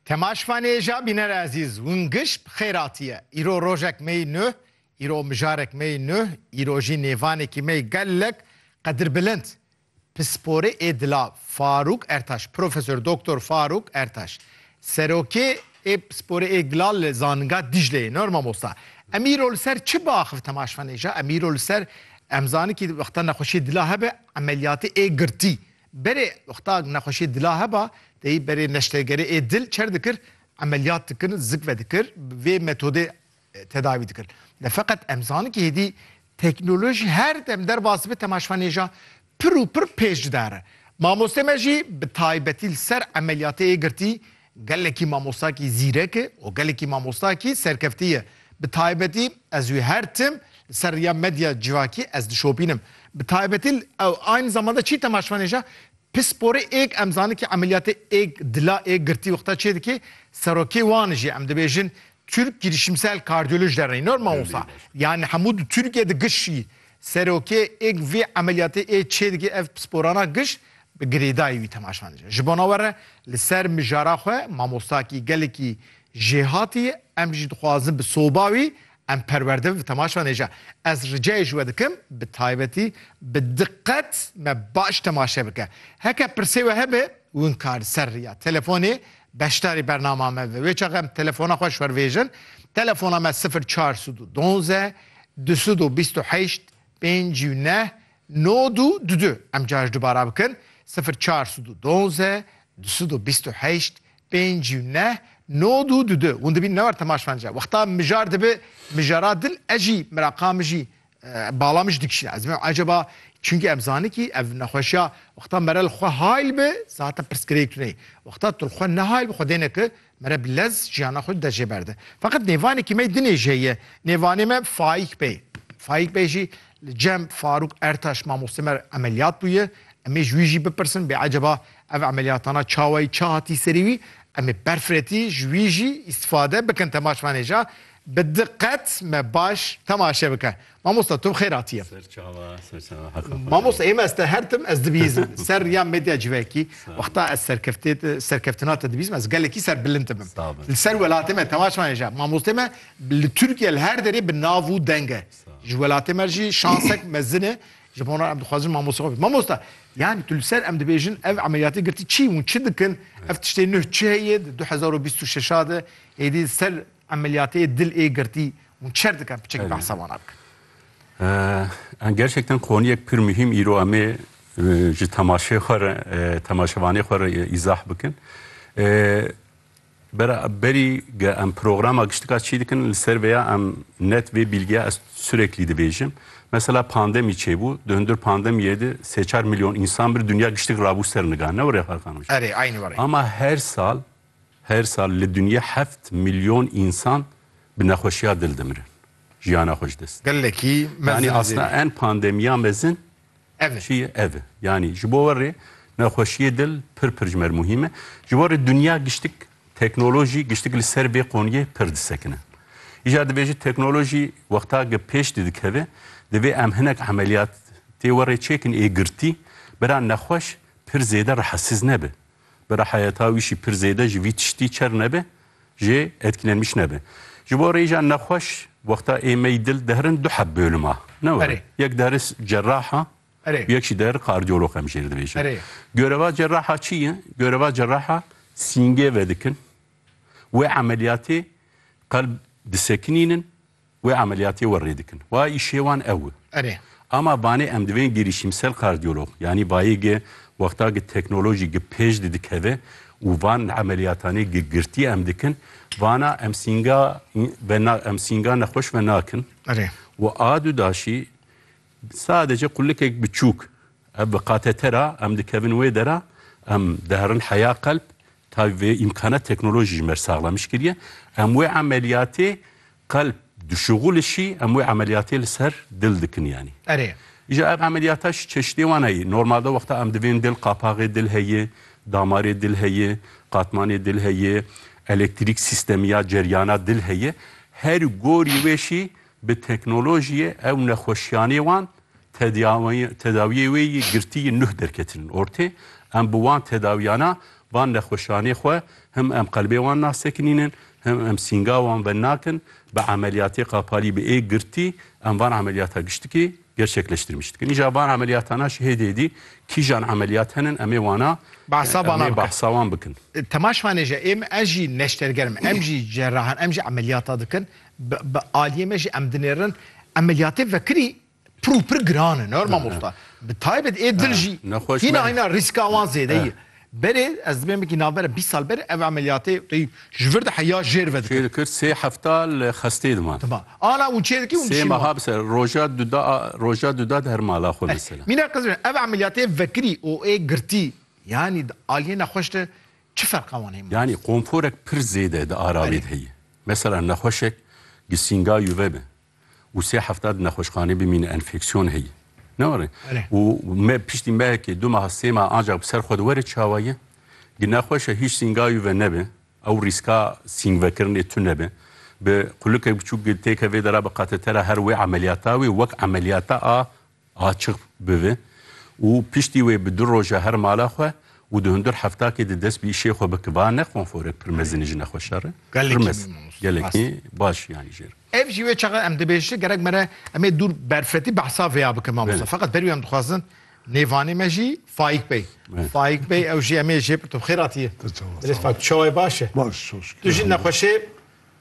Temaş Fanêja bîner ezîz win giş bi xêr hatiye. Îro rojek mey nuh, îro mijarek mey nuh, îro jî nêvanekî mey gelek qedirbilind. Pisporê ê dila Farûk Ertaş, Profesor Doktor Farûk Ertaş. Serokê ê pisporê ê dila li Zaninga Dîcleyê nor mamosta. Em îro li ser çi biaxivin Temaş Fanêja? Em îro li ser em zanikî wexta nexweşiyê dila hebe emeliyatê ê girtî. Berê wexta nexweşiyê dila heba teyî berê neştegerê ê dil çer dikir, emeliyat dikir, zik vedikir, bi vê metodê tedawî dikir. Lê feqet em zanin kî hêdî teknolojî her dem derbas dibe temaşvanêja pir û pir pêş didare. Mamostê me jî bi taybetî li ser emeliyatê ê girtî Gelekî mamostakî zîrek e û gelekî mamostakî serkeftî ye. Bi taybetî ez wî her tim li ser riya medya civakî ez dişopînim. Bi taybetî li ew aynî zaman de çî temaşvanêja pisporê êg em zanin kî emeliyatê êg dila êg girtî wexta çê dikê serokê wan jî em dibêjin Türk girişimsel kardiyoloj derneği nor mamosta yani hemû di Tirkiye di giş jî Serokê êg vê emeliyatê ê çê dike ev pisporana giş bi girêdayî wî temaşa dike. Ji bona we re li ser mijara xwe mamostakî gelekî jêhatî ye, em jî dixwazin bi soba wî em perwerde bin bi temaşa nêja. Ez ricayê ji we dikim bi taybetî bi diqet me baş temaşe bike. Heke pirsê we hebe winka li ser riya telefonê beşdarî bernama me bibe. Wê çax em telefona xwe ji xwe re vêjin. Telefona me sifir çar sed û donzdeh Du sed û bîst û heşt pênc û neh nod û du du em carî dubara bikin sifir çar sed û duwaze du sed û bîst û heşt pênc û neh nod û du du hûn dibînin ne war Temaş Fence wexta mijar dibi mijara din ez jî miraqa min jî bala min jî dikişîne ez dibim ecaba çunkî em zanin kî ev nexweşiya wexta mere li xwe hayl bi zate pirsgirêk tune ye wexta tu li xwe nehayl bi xwe dêne ki Mere bi lez jiyana xwe dide jêberde. Feqet nêvanekî me dinêjê ye. Nêvanê me Faik Bey. Faik Bey jî li cem Faruk Ertaş mamoste me re emeliyat bûye. Em ê ji wî jî bipirsin bê eceba ev emeliyatana çawayî çi hatî serî wî. Em ê berfirretî ji wî jî îstifade bikin temaşvanêja bi diqet me baş temaşe bike. Mamosta tu xêr hatiye. Serçava, serçava haka. Mamosta ême ez te hertim ez dibîzim. Ser riya medya civekî wexta ez serkeftê serkeftina te dibîzim ez gelekî ser bilind dibim. Li ser welatê me temaşa hêja. Mamostê me li Tirkiye li her derê bi nav û deng e. Ji welatê me jî şansek mezin e. Ji bo em dixwazin mamosta xwe. Mamosta yani tu li ser em dibêjin ev emeliyatê girtî çî û çi dikin? Ev tiştê nuh çi heye di 2026 de êdî ser emeliyatê dil ê girtî Hûn çer dikin piçekî behsa wan a bikin. Em gerçekten qoniyek pir muhîm îro em ê ji temaşê xwe re temaşevanê xwe re îzah bikin. Bera berî ge em programa giştika çî dikin li ser vêya em net vê bîlgiya ez süreklî dibêjim. Mesela pandemî çêbû, di hundir pandemiyê de sê çar milyon însan bir dinya giştik rabû ser niga. Ne were Xalkan Rojî. Erê, eynî were. Ama her sal Her sal li dinya heft milyon însan bi nexweşiya dil dimirin. Jiyana xwe ji dest didin. Gelekî mezin e. Yanî asna en pandemiya mezin çi ye? Ev e. Yanî ji bo we rê nexweşiyê dil pir pir ji me re muhîm e. Ji bo rê dinya giştik teknolojî giştik li ser vê qoniyê pir disekine. Îcar dibêje teknolojî wexta ge pêş de dikeve divê em hinek emeliyat tê we rê çêkin ê girtî bira nexweş pir zêde rehesiz nebe. Bira heyeta wî jî pir zêde ji vî tiştî çer nebe jê etkilenmiş nebe. Ji bo rêja nexweş wexta ê mey dil diherin du heb bölüm a. Ne were. Yek dihere cerraha û yek jî dihere kardiyolog em jêr dibêjin. Göreva cerraha çi ye? Göreva cerraha sîngê vedikin wê emeliyatê qelb disekinînin Wê emeliyatê we rê dikin. Wa îşê wan ew e. Erê. Ama vanê em divên girîşîmsel kardiyolog yanî bayê gi wexta gi teknolojî gi pêş di dikeve û van emeliyatanê gi girtî em dikin vana em sînga ve na em sînga nexweş ve nakin. Erê. Û a du daşî sadece qulikek biçûk Ev bi qate te ra em dikevin wê dera, em diherin heya qelb, tayî vê îmkana teknolojî ji mer saxlamiş kiriye. Em wê emeliyatê qelb dişuxulişî, em wê emeliyatê li ser dil dikin yanî. Erê. Îja ev emeliyata ji çeşidê wan heye. Normalde wexta em divên dil qapaxê dil heye, damarê dil heye, qatmanê dil heye, elektrîk sîstemî ya ceriyana dil heye. Her gorî wê şî Bi teknolojiyê ew nexweşiyanê wan tedawiyê wê yî girtî yî nuh derketinin ortê. Em bi wan tedawiyana van nexweşiyanê xwe him em qelbê wan nasekinînin him em sînga wan ve nakin bi emeliyatê qapalî bi ê girtî em van emeliyata giştikê gerçekleştirmiş dikin. Îja van emeliyatana ji hêdî hêdî kîjan emeliyat henin em ê wana Behsa wana bikin. Behsa wan bikin. Temaşvanê ji êm ez jî neştergerim em jî cerrahan em jî emeliyata dikin. Bi aliyê me jî em dinêrin emeliyatê vekirî pir û pir giran in her mamosta. Bi taybet ê dil jî hîna hîna rîska wan zêde ye. Berê ez dibêjim wekî navbera bîst sal berê ev emeliyatê wekî ji vir de heya jêr ve dikir. Çê dikir sê hefta li xestê diman. Diman. Ana û çê dikî û diçî wan. Sê meha bi ser roja du da roja du da di her mala xwe mesela. Mîna qizim ev emeliyatê vekirî û ê girtî yanî di aliyê nexweş de Çi ferqa wan heye? Yanî konforek pir zêde di ara wê de heye. Mesela nexweşek gisînga yuve be û sê hefta di nexweşxanê bimîne enfeksiyon heye. Ne were? Û me piştî mehekê, du meha, sê meha ancak bi ser xwe de were çawa ye? Gi nexweş e hîç sînga yuve nebe, ew rîska sîngvekirinê tune be. Bi qulikek biçûk têke vê de re bi katetera her wê emeliyata wê wek emeliyata a Açiq bibe û piştî wê bi du roj e her mala xwe û di hundir heftakê de dest bi îşê xwe bike. Ba ne konforek pir mezin e ji ne xwe şer e. Gelekî mezin. Gelekî mezin. Gelekî baş yanî jê re. Ev jî wê çaxa em dibêjin. Gerek me re em ê dûr berfetî behsa vêya bikin mamoste. Feqet berî wê em dixwazin nêvanê me jî Faîk Bey. Faîk Bey ew jî em ê jê bi tu bi xêr hatiyê. Te çawa sağ ol. Bilêz Faîk tu çawayê baş e? Baş çok şükür. Tu jî nexweşê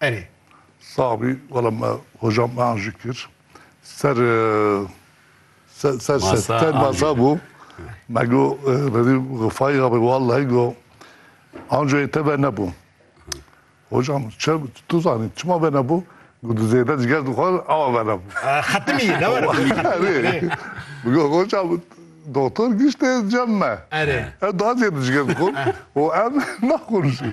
Erê. Sax bî wela me hocam me an jî kir. Ser ser ser Masa ser an jî masa kir. bû. Me go redî xifayî abi wallahî go ancoyê te ve nebû. Hocam çi tu zanî çima ve nebû? Go tu zêde ciger dixwar awa ve nebû. Ah, Xetimî ne were tu yî xetimî. Erê. Erê. Go hocam doktor giştê cem me. Erê. Ew daha zêde ciger dixwar û em naxwûnişî.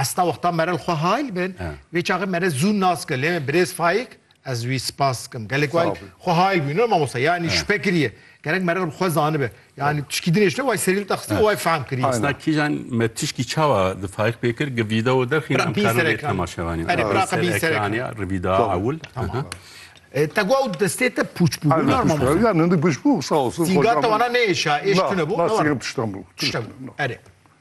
Esta wexta merel xwe hayl bin vê çaxê mere zû nas kir lê birêz Faik ez wî spas dikim gelek wayl xwe hayl bû ne mamosta yanî şüphe kiriye gerek merel bi xwe zanibe yanî tişkî din hêşte way serî li te xistî way fehm kiriye. Esta kîjan me tişkî çawa di Faik pê kir gi vîdeo derxîn em karin vê temaşevanî bîn ser ekranî ya ri vîdeo ewil Te got ew destê te pûç bû bû nar mamosta. Ya ne pûç bû sağ olsun. Sîga te wana nêêşa êş tune bû. Na sîgem tiştan bû. Tiştan bû erê.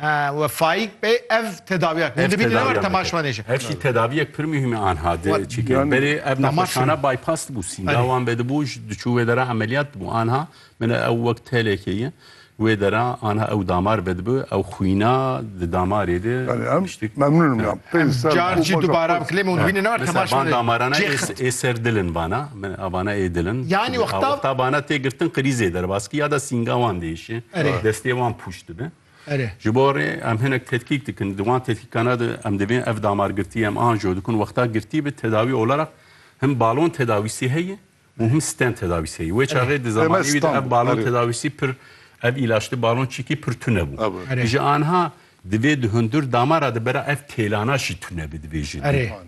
He we Faik bey ev tedawiya kir. Hûn dibînin ne were temaşvanê jî. Ev jî tedaviyek pir muhîm e anha di çîkê. Berê ev nexweşxana bypass dibû sînda wan vedibû diçû wê dera emeliyat dibû anha min e ew wek telekê ye. Wê dera anha ew damar vedibi ew xwîna di damarê de tiştik. Memnûn im. Em car jî dubara bikilê me hûn dibînin ne were temaşvanê. Van damarana ê ser dil in vana min a vana ê dil in. Yanî wexta. Wexta vana tê girtin krîzê derbas kir ya da sînga wan diêşe destê wan pûç. dibin. Ji bo rê em hinek tetkîk dikin. Di wan tetkîkana de em divê ev damargirtiyê em anjo dikun wexta girtî bi tedawî olara him balon tedawîsî heye û him sten tedawîsî heye. Wê çaxê di zamanî wî de ev balon tedawîsî pir ev îlaçli balon çîkî pir tune bû. Ji anha divê di hundir damara de bera ev têlana jî tune bi divê jî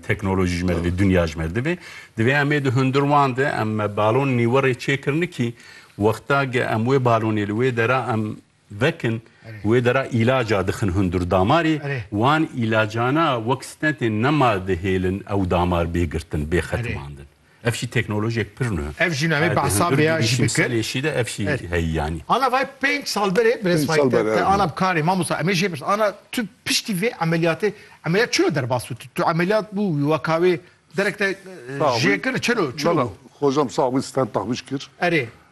teknolojî ji me divê dunya ji me divê. Divê em ê di hundir wan de em balon nîwirê çêkirinê kî wexta ge em wê balonê li wê dera em vekin wê dera îlaca dixin hundir damarê wan îlacana wek stentên nema dihêlin ew damar bê girtin bê xetimandin ev jî teknolojiyek pir nû ev jî navê behsa vê ya jî bikir lêşî de ev jî heyî yanî ana vay pênc sal berê bi resmay te te ana bi karê mamosta emê jê birs ana tu piştî vê emeliyatê emeliyat çilo derbas bû tu emeliyat bû wî weka wê derek te jê kir çilo çilo xocam sax bî stent taxbîş kir erê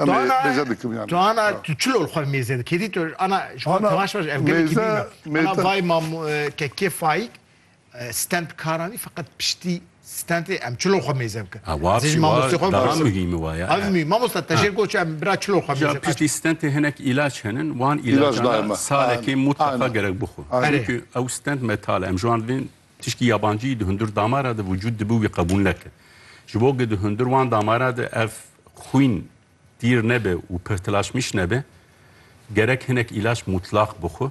Em ê mêze dikim yani. Tu ana tu çi lol xwe mêze dikî? Hêdî tu ana ji bo tevaş baş ev gelekî mêze, dîna. Ana mêze. vay mam kekê Faik stand karan î feqet piştî standê em çi lol xwe mêze bikin. Ha wa Ez ê ji pî wa mamostê xwe daha bipisim. muhîm e wa ya. Ev mî mamosta te jêr goç em bira çi lol xwe mêze Ya bikin. piştî standê hinek îlaç henin wan İlaç îlacan daima. salekê Aynen. mutleqa Aynen. gerek bixwe. Aynen. Çünkü ew stand metal e em ji wan divên Tişkî yabancî di hundir damara de vücûd dibû wî qebûl neke. Ji bo ku di hundir wan damara de ev xwîn tîr nebe û pirtilaşmîş nebe gerek hinek îlaç mutlax bixwe.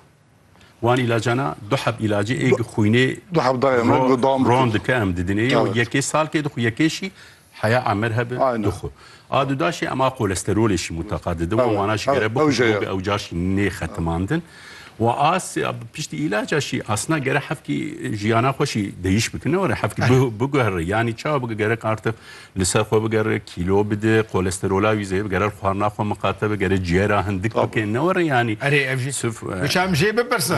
Wan îlacana du heb îlacê ê ku xwînê Du heb dayê me ro dam ron dike em didin ê û Evet. yekê salkê dixwe yekê jî Heya emir hebe tu xwe. A du daşê em a kolesterolê jî muteqa didin û wana ji gere bixwînin hûbê ew car jî nêxetimandin. Wa as piştî îlaca jî asna gere hevkî jiyana xwe jî deyîş bikin ne were hevkî biguhere yanî çawa bike gerek artix li ser xwe bigere kîlo bide kolesterola wî zêde gerer xwarina xwe miqate bigere ciyera hindik bike ne were yanî. Erê ev jî tu çi em jê bipirsin.